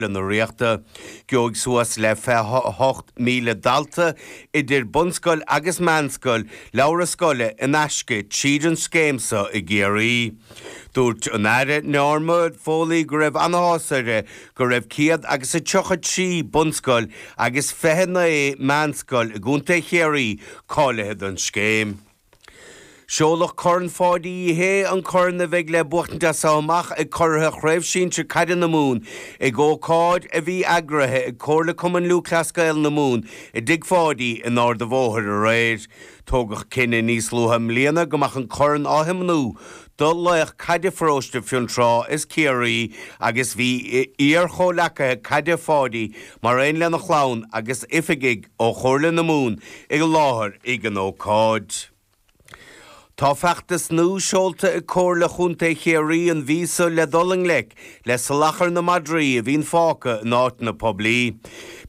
leanaí na Ríochta. Gheobhaidh suas le 28,000 dalta, idir bunscoil agus meánscoil, leabhra scoile in aisce tríd an scéim seo i gCiarraí. Dúirt an tAire Norma Foley go raibh an-áthas uirthi go raibh céad agus a tríocha trí bunscoil agus fiche a naoi meánscoil i gContae Chiarraí cáilithe don scéim. Seoladh Corn Pháidí Uí Shé, an corn a bheidh le buachtaint as seo amach ag curaithe Chraobh Shinsir Caide na Mumhan, ag ócáid a bhí eagraithe ag Comhairle Cumann Lúthchleas Gael na Mumhan i dTigh Pháidí in Ard a' Bhóthair aréir. Tógadh cinneadh níos luaithe i mbliana go mbeadh an corn á thiomnú do laoch caide Pharóiste Fionntrá is Ciarraí agus bhí iar-chomhleacaithe caide Pháidí mar aon lena chlann agus oifigigh ó Chomhairle na Mumhan i láthair ag an ócáid. Tá feachtas nua seolta ag Comhairle Chontae Chiarraí an mhí seo le dul i ngleic le salachar na madraí a bhíonn fágtha in áiteanna poiblí,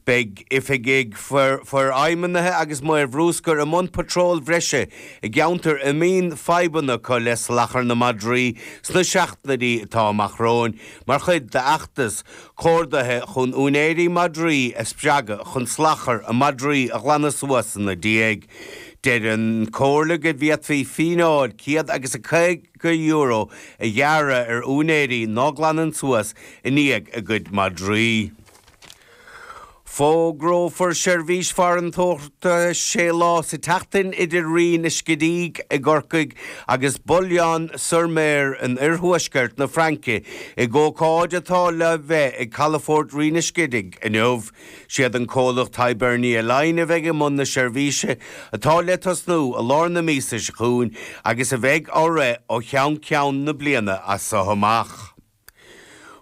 beidh oifigigh forfheidhmithe agus maoir bhruscair i mbun patróil bhreise i gceantair a mbíonn fadhbanna acu le salachar na madraí sna seachtainí atá amach romhainn mar chuid d'fheachtas comhordaithe chun úinéirí madraí a spreagadh chun salachar a madraí a ghlanadh suas ina ndiaidh. Deir an Chomhairle go bhféadfaí fíneáil 150 euro a ghearradh ar úinéirí ná glanann suas i ndiaidh a gcuid madraí. Fógrófar seirbhís farantóireachta sé lá sa tseachtain idir Rinn an Scidígh i gCorcaigh agus Boulogne-sur-Mer in oirthuaisceart na Fraince, ag ócáid atá le bheith ag calafort Rinn an Scidígh inniu. Siad an comhlacht Hibernia Line a bheidh i mbun na seirbhíse, atá le tosnú i lár na míosa seo chugainn agus a bheidh á rith ó cheann ceann na bliana as so amach.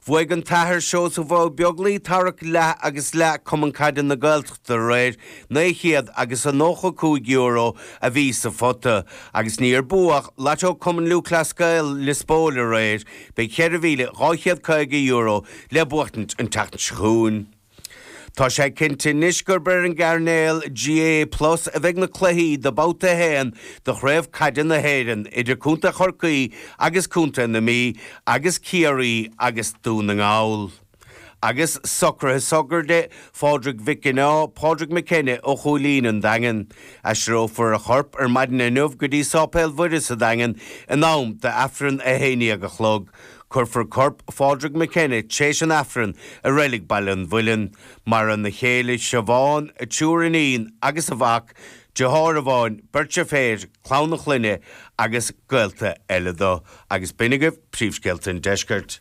Bhuaigh an tAthair Seosamh Ó Beaglaoich tarrac leath agus leath Cumann Caide na Gaeltachta aréir, naoi chéad agus a nócha cúig euro a bhí sa phota, agus níor buadh Lató Cumann Lúthchleas Gael Lios Póil aréir, beidh cheithre mhíle dhá chéad caoga euro le buachtaint an tseachtain seo chugainn. Tá sé cinnte anois gurb ar an gcainéal GAA plus a bheidh na cluichí de Bhabhta 1 de Chraobh Caide na hÉireann idir Contae Chorcaí agus Contae na Mí agus Ciarraí agus Dún na nGall. Agus socruithe sochraide Phádraig Mhic Gineá, Pádraig McKenna, ó Chúilín, an Daingean. Aistreofar a chorp ar maidin inniu go dtí Sáipéal Mhuire sa Daingean in am d'aifreann a haon déag a chlog. Cuirfear corp Phádraig McKenna tréis an Aifrinn i Reilig Baile an Mhuilinn. Maireann a chéile Siobhán, a triúr iníon agus a mhac, deartháir amháin, beirt deirféar, clann a chlainne agus gaolta eile dó. Agus b'in agaibh Príomhscéalta an Deiscirt.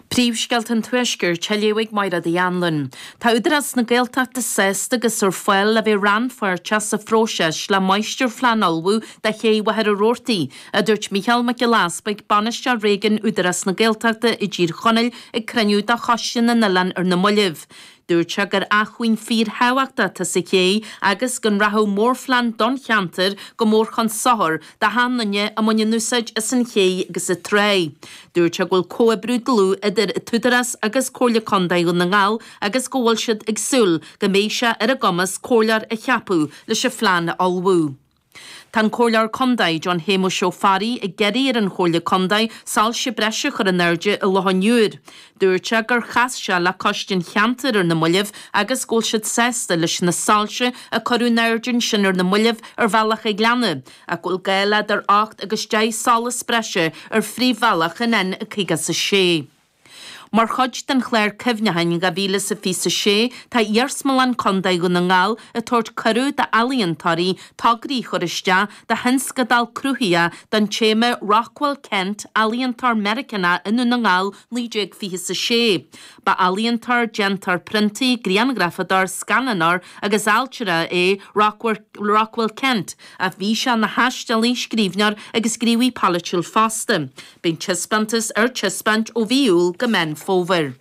Príomhscéalta an Tuaiscirt á léamh ag Máire Uí Anluain. Tá Údarás na Gaeltachta sásta agus ar fáil le bheith rannpháirteach sa phróiseas le máistirphlean a ullmhú do Ché Mhachaire Rabhartaigh a dúirt Mícheál Mac Giolla Easpaig, Bainisteoir Réigiúin Údarás na Gaeltachta i dTír Chonaill ag cruinniú de Choiste na nOileán ar na moillibh. Dúirt sé gur acmhainn fíor thábhachtach atá sa chéidh agus go nrachadh mórphlean don cheantar go mór chun sochair d'achan nduine a mbaineann úsáid as an chéidh agus an tráigh. Dúirt sé go bhfuil comhoibriú dlúth idir an tÚdarás agus Comhairle Contae Dhún na nGall agus go bhfuil siad ag súil go mbeidh sé ar a gcumas comhairleoir a cheapadh leis an phlean a ullmhú. Tá an Comhairleoir Contae, John Shéamuis Ó Fearraigh, ag iarraidh ar an Chomhairle Contae soilse breise a chur in airde i Loch an Iúir. Dúirt sé gur chas sé le coiste an cheantair ar na moillibh agus go bhfuil siad sásta leis na soilse a cuireadh in airde ansin ar na moillibh ar Bhealach an Ghleanna, ach go bhfuil gá le idir ocht agus deich solas breise ar phríomhbhealach an N56. Mar chuid den Chlár Cuimhneacháin 2026, tá Iarsmalann Contae Dhún na nGall ag tabhairt cuireadh d'ealaíontóirí tograí a chur isteach do thionscadal cruthaitheach don téama Rockwell Kent, Ealaíontóir Meiriceánach i nDún na nGall 1926. Ba ealaíontóir, déantóir priontaí, grianghrafadóir, scannánóir agus ailtire é Rockwell Kent, ach bhí sé ina thaistealaí, scríbhneoir agus gníomhaí polaitiúil fosta. Beidh an taispeántas ar taispeáint ó mhí Iúil go Meán Fómhair.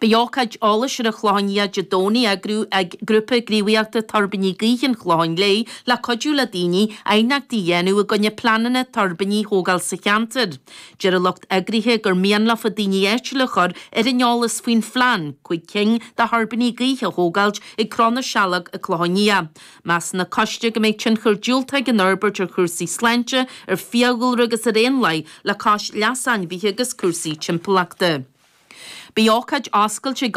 Beidh ócáid eolais ar an Chlochán Liath Dé Domhnaigh á eagrú ag Grúpa Gníomhaíochta Tuirbíní Gaoithe an Chlocháin Léith le cuidiú le daoine aighneachtaí a dhéanamh i gcoinne pleananna tuirbíní a thógáil sa cheantar. Deir a lucht eagraithe gur mian leofa daoine áitiúil a chur ar an eolas faoin phlean cúig cinn de thuirbíní gaoithe a thógáilt ag Cró na Sealg, an Clochán Liath. Measann an Coiste go mbeidh tionchar diúltach ag an fhorbairt ar chúrsaí sláinte, ar fiadhúlra agus ar éanlaith le cois leas ainmhithe agus cúrsaí timpeallachta. Beidh ócáid oscailte ag.